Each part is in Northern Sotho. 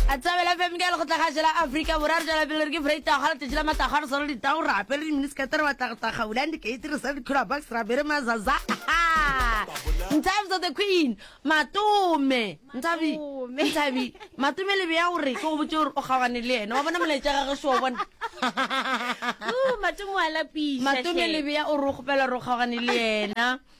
a tsabela fm ke lekgotla ga jela afrika borwa re tswela pele re ke freitag ga letšatši la matago re sala ditago re apere diminisekete re batlagataga bulang dikeiti re sala dikhula box ra bere mazaza ntabi so the queen matome ntabi ntabi matome lebe ya gore ke go botse gore o kgaogane le ene wa bona molaetša gage se wa bona matome lebe ya o re o kgopela gore o kgaogane le ena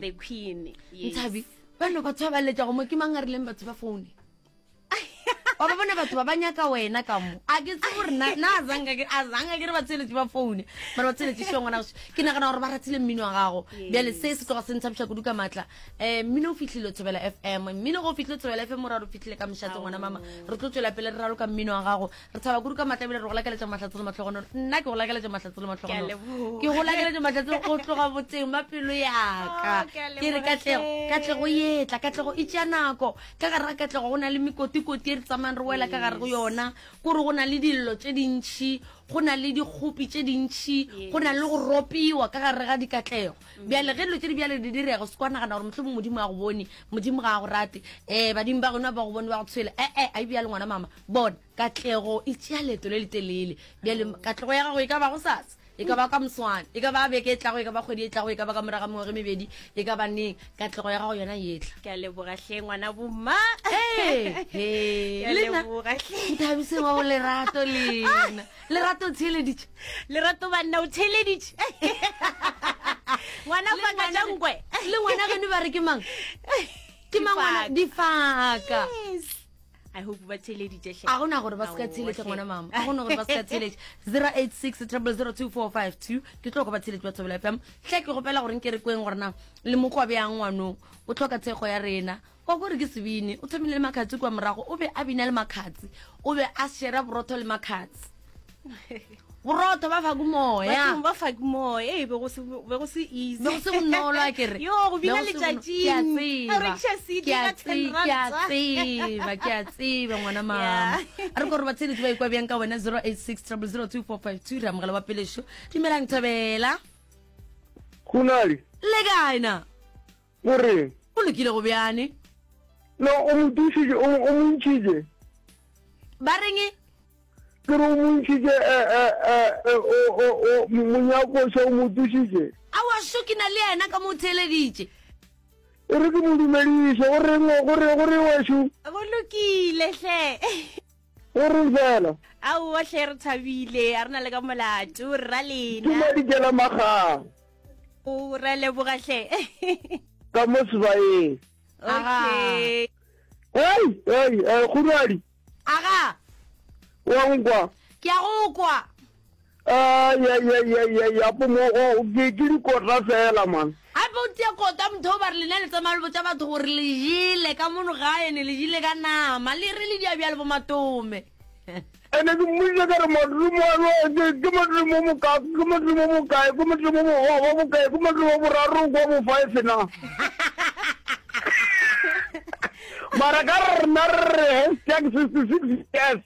the queen nthabi ba no batho ba ba letlago mo ke mang a rileng batho ba foune wa ba bona batho ba ba nyaka wena ka mo a ke tse gore na a zanga ke re ba tsheletse ba foune mara ba tsheletse seo ngwana goso ke nagana gore ba ratile mmino wa gago bjale se se tloga se ntshabiša kudu ka maatla um mmino o fitlhile thobela f m mmino go o fitlhile thobela f m o ra re o fitlhile ka moshatse ngwana mama re tlo tswela pele re raloka mmino wa gago re tshaba kudu ka matla ebile re go lakeletša mahlatse le matlhogonolo nna ke go lakeletša mahlatse le matlhogonolo ke go lakeletša mahlatse go tloga boteng ba pelo yaka oh, ke re katlego katlego etla katlego e tšea nako ka gare ga katlego go na le mekotikoti e re tsamayng re wela ka gare go yona kore go na le dillo tše dintšhi go na le dikgopi tše dintšhi go na le go ropiwa ka gare ga dikatlego Bjale ge dilo tše di bjale di direga, o se kwa nagana gore mohlomong Modimo a go bone, Modimo ga a go rate, um badimo ba geno ba go bone ba go tshwele. E-e, a e bjalo ngwana mama. Bona, katlego e tšea leeto le letelele. Bjale katlego ya gago e ka ba go sasa, e ka ba ka moswane, e ka ba beke e tlago, e ka ba kgwedi e tlago, e ka ba ka morago ga mengwaga e mebedi, e ka ba neng, katlego ya gago yona e tla. Ke a leboga hle ngwana bomma. Ee, he, Ke a lena leboga hle. Nthabiseng wa go lerato lena. lerato o theeleditše lerato banna o theeleditše ngwana Le ngwana- fakajankwe le ngwana geno ba re ke mang ke mang ngwana difaka i hope ba theeleditše hle. a gona gore ba se ka Aowa, theletša hle. ngwana mama a gona gore ba se ka theletša 086 002 ke tlo go ba theletše ba thobela fm hle ke gopela gore nke re kweng gorena le mokwa bjang ngwanong o tlhoka thekgo ya rena Kwa gore ke se bine, o thomile le makhatsi kwa morago. O be a bina le makhatsi. O be a shera borotho le makhatsi. borotho ba faku moya bathong ba faku moya ee be go se be go se easy be go se bonolo a kere yo go bina le tšatši ke a tseba re tšhe se di ka tseba ke a tseba ke a tseba ngwana mama a re gore ba tsedi ba ikwa bjang ka wena 0860024452 ra mogala wa pelešo dumelang thobela khunali le kaina go re. Go lokile go bjane. No, o mo dišitše, o mo ntšhitše. Ba reng e? Ke re o mo ntšhitše, eh, eh, eh, eh, o, o, o, monyakoša o mo tsošitše. A wa šo ke na le yena ka mo theeleditše. E re ke mo dumediše, go reng, go re, go re wa šo? Go lokile, hle. O re bjalo. Aowa hle re thabile, a re na le ka molato, rra lena. Ke madikela magang. O re leboga hle. Ka mo sebaeng. Okay. Hei, hei, eh, kguradi. Aga. Wa nkwa. Ke a go kwa. yapo mo ke dikota fela man gape o tia kota motho o ba re lena le tsamaya le botsa batho gore le jele ka mono gae ne le jele ka nama le re le diabja le bomatome ene ke mmoditse ka re modimo ke modimo mokae ke modimo mokae ke modimo mogoba mokae ke modimo boraro kwa bofive na mara ka rena re re hashtag sixty six years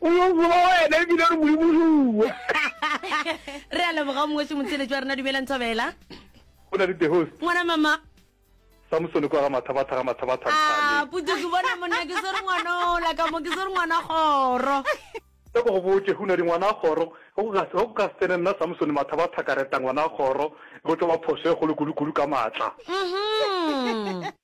o yo bua wena ebile re modimo re bua re a leboga mongwe se motsheletso wa rena dumelang thobela o na le the host ngwana mama samsone kwa ga mathabatha ga mathabatha ah, puto ke bona monna ke swere ngwana ola ka mo ke swere ngwana kgoro ka go botse go na di ngwana kgoro go ka se tsene nna samsone mathabatha ka reta ngwana kgoro go tlo ba phoso e golo kudu-kudu ka maatla mm-hmm.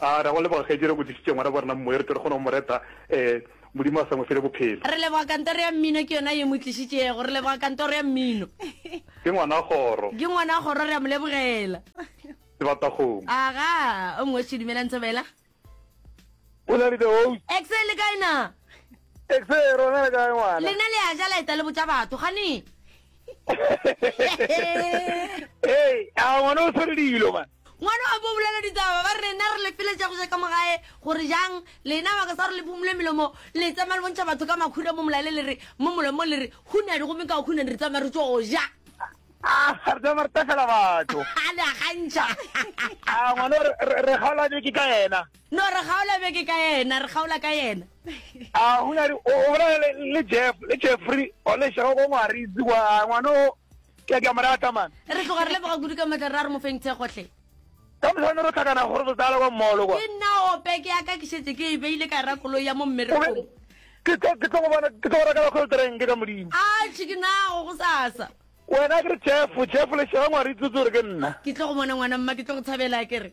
A ra go leboga kgaetšedi re go tlišitše ngwana ba rena momoya re tle re kgone go mo reta um Modimo a sa mo fele bophelo. Re leboga kantoro ya mmino ke yona ye mo tlišitšego. Re leboga kantoro ya mmino. Ke ngwana kgoro. Ke ngwana kgoro re a mo lebogela. Sebatakgomo. Aga o mongwe se dumelang thobela. Go na le the host. Excel le kae na? Exceer, o na le kae ngwana? Lena le a ja la eta le botša batho gane. Hey, a ngwana o tshwere dilo man. Ngwana wa bo bolela ditaba ba re rena re le feletša go ja ka mogae gore jang lena baka sa gore le phumule melomo le tsamaya le bontšha batho ka makhura mo molaele le re mo molomo le re hunadi gomme ka hunadi re tsamaya re tso ja Ah, re tsamaya re tafela batho. a le a gantšha. Ah, ngwana re re kgaola ke ka ena. No, re kgaola beke ka yena, re kgaola ka yena. A go na di, o bolela le, le Jeff, le Jeffrey, o le šego go ngwaritsi kwa, a ngwana o, ke a ke a mo rata man. Re tloga re leboga kudu ka matla, ra re mo feng thekgo hle. Ka mosane ro tlhakana gore re tsala kwa mall kwa. Ke nna o peke ya ka ke šetse ke e beile ka ra koloi ya mo mmerekong. Ke tlo, ke tlo go bona, ke tlo go reka la cold drink ka Modimo. A tšhe ke nago go sasa. Wena ke re Jeff, Jeff le šega ngwaritsi o tse gore ke nna. Ke tlo go bona ngwana mma, ke tlo go thabela ke re.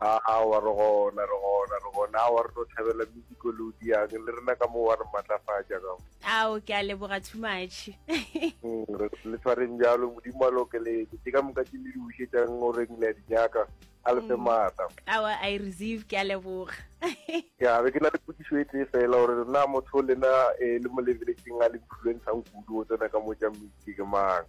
a a wa re gona re gona re gona a wa re tlo thabela music o le o diang le rena ka moo wa re matlafatša ka mo ao ke a leboga too much mm, le tshwareng jalo modimo a le okeletse ke ka moka ke le di bušetšang o reng le ya di nyaka a le fe mm. maatla awa i receive ke a leboga ya be ke na le potsiso e tee fela gore na motho lena eh, le mo lebeletseng a le influencang kudu o tsena ka mo ja mmitse ke mang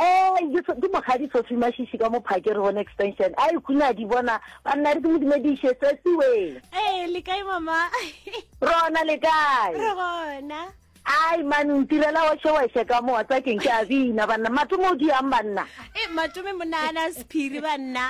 Ee, ke so, ke Mokgadi Sophie Mashishi ka mo Phakere gone extension. A ikune a di bona. Banna re ke mo dumediše tsesiweng. Ee, le kae mama? Rona le kae? Re gona. Ai man ntirela wa sheweshe ka mo tsa keng ke a bina banna matome o diang banna e matome mo nana sephiri banna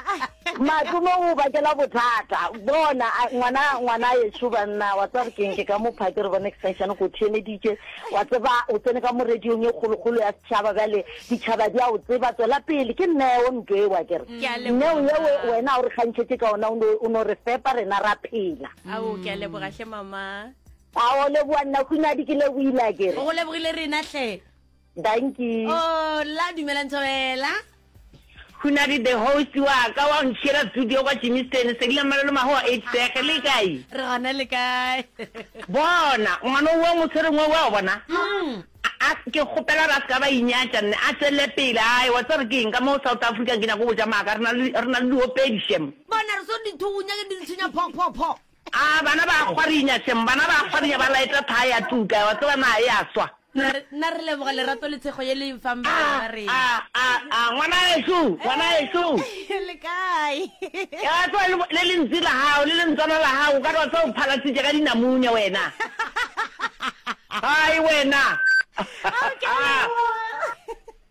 matome o bakela bothata bona ngwana ngwana ye shu banna wa tsa re keng ke ka mo phake re bona extension go thiemeditše wa tseba o tsene ka mo radiong e kgolokgolo ya Tšhaba, bjale ditšhaba di a o tseba. Tswela pele, ke neo, ntlo eo, a ke re. Ke a leboga, Neo yeo Mama. wena o re kgantšhetše ka ona, o no, o no re fepa, rena ra phela. Ao, ke a leboga hle, Mama. A o leboga nna, Hunyadi, ke lebohile, a ke re. Go lebogile rena hle. Dankie. Oh, la, dumelang Thobela. Hunadi the host wa ka wa ntšhiela studio kwa Jimmysten se dila malolo maho a itsege le kae re gona le kae bona ngwana wa motshwereng wa wa bona a ke kgopela ra ska ba inyatša nne a tswelele pele ai wa tsere ke eng ka mo South Africa ke nyako botša maaka rena rena le diopedi shem bona re so dithunya ke di ntshinya pho pho pho A bana ba a kgwarinya shem, bana ba a kgwarinya ba laeta thaa ya tuka, wa tseba naa e a swa. Na re, na re leboga lerato le tshego ye le e nfang A, bana ba a, rena. a, a, ngwanaxo, ngwanaxo. Ee, le kae? Ee, wa tseba, le, le lentsi la gago, le lentswana la gago, o ka re wa tseba o phalasitše ka dinamunya wena. Hai wena. Ao, ke a leboga.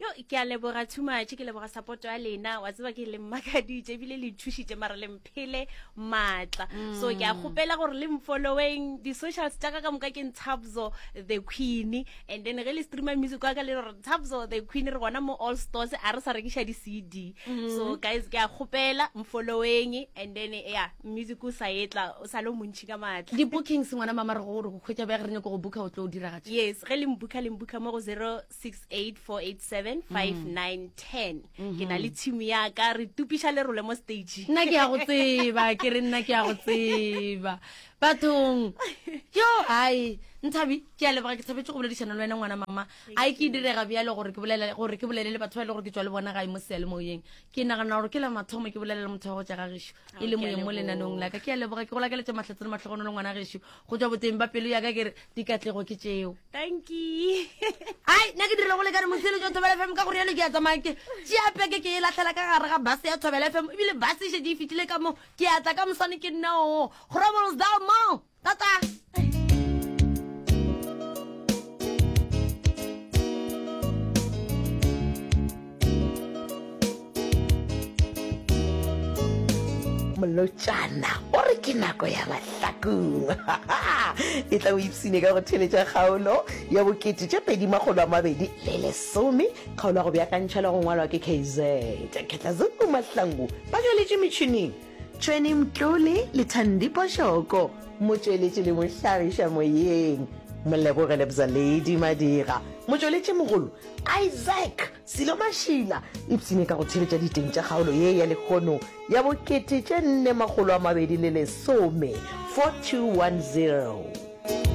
yo ke a leboga too much ke leboga support ya lena wa tseba ke le mmakaditše ebile le thušitše mara le mphele maatla so ke a kgopela gore le mfolloweng di-socials tša ka ka moka ke ntshabzo the queen and then ge le streamer music wa ka le re ntshabzo the queen re gona mo all stores a re sa rekiša di-cd so guys ke a kgopela mfolloweng and then ya music o sa etla o sa le o montšhi ka maatla di-bookings ngwana mama re go gore go kgwetša bja ge re nyako go booka o tlo o diragatša yes ge le mbuka le mbuka mo go zero 684875910 ke na le tshimo ya ka re tupiša lerole mo stage nna ke ya go tseba ke re nna ke ya go tseba bathong yo ai nthabi ke a leboga ke thabetse go boledišana le wena ngwana mama a ke direga bjale gore ke bolele gore ke bolele le batho ba e le gore ke tswa le bona gae mo sealemoyeng ke nagana gore ke la mathomo ke bolelela motho wa go tša ga gešo e le moyeng mo lenanong la ka ke a leboga ke go lakeletse mahlatse le matlhogono le ngwana gešo go tšwa boteng ba pelo yaka ke re dikatlego ke tšeo ai nna ke direlo go le ka re mosele jo thobela fm ka gore yalo ke ya tsamaya ke tšeapeke ke e latlhela ka gare ga base ya thobela fm ebile base e šedi e fetile ka moo ke ya tla ka moswane ke nna oo grobles da mo tata molotšana o re ke nako ya mahlakong e tla o ipsine ka go theletša kgaolo ya bokete tša pedi makgolo a mabedi le lesome kgaolo ya go beakantšha le go ngwalwa ke kz ketlazoku mahlangu ba galetše metšhineng Tšhweni Mtlole le Thandi Poshoko, motšweletši le mohlagiša moyeng, Moleboge Lebzaledi Madira, motšweletšimogolo, Isaac Silo Mashila, ipsine ka go theeletša diteng tša kgaolo ye ya lekgono ya bo kete tše nne makgolo a mabedi le lesome, 4210.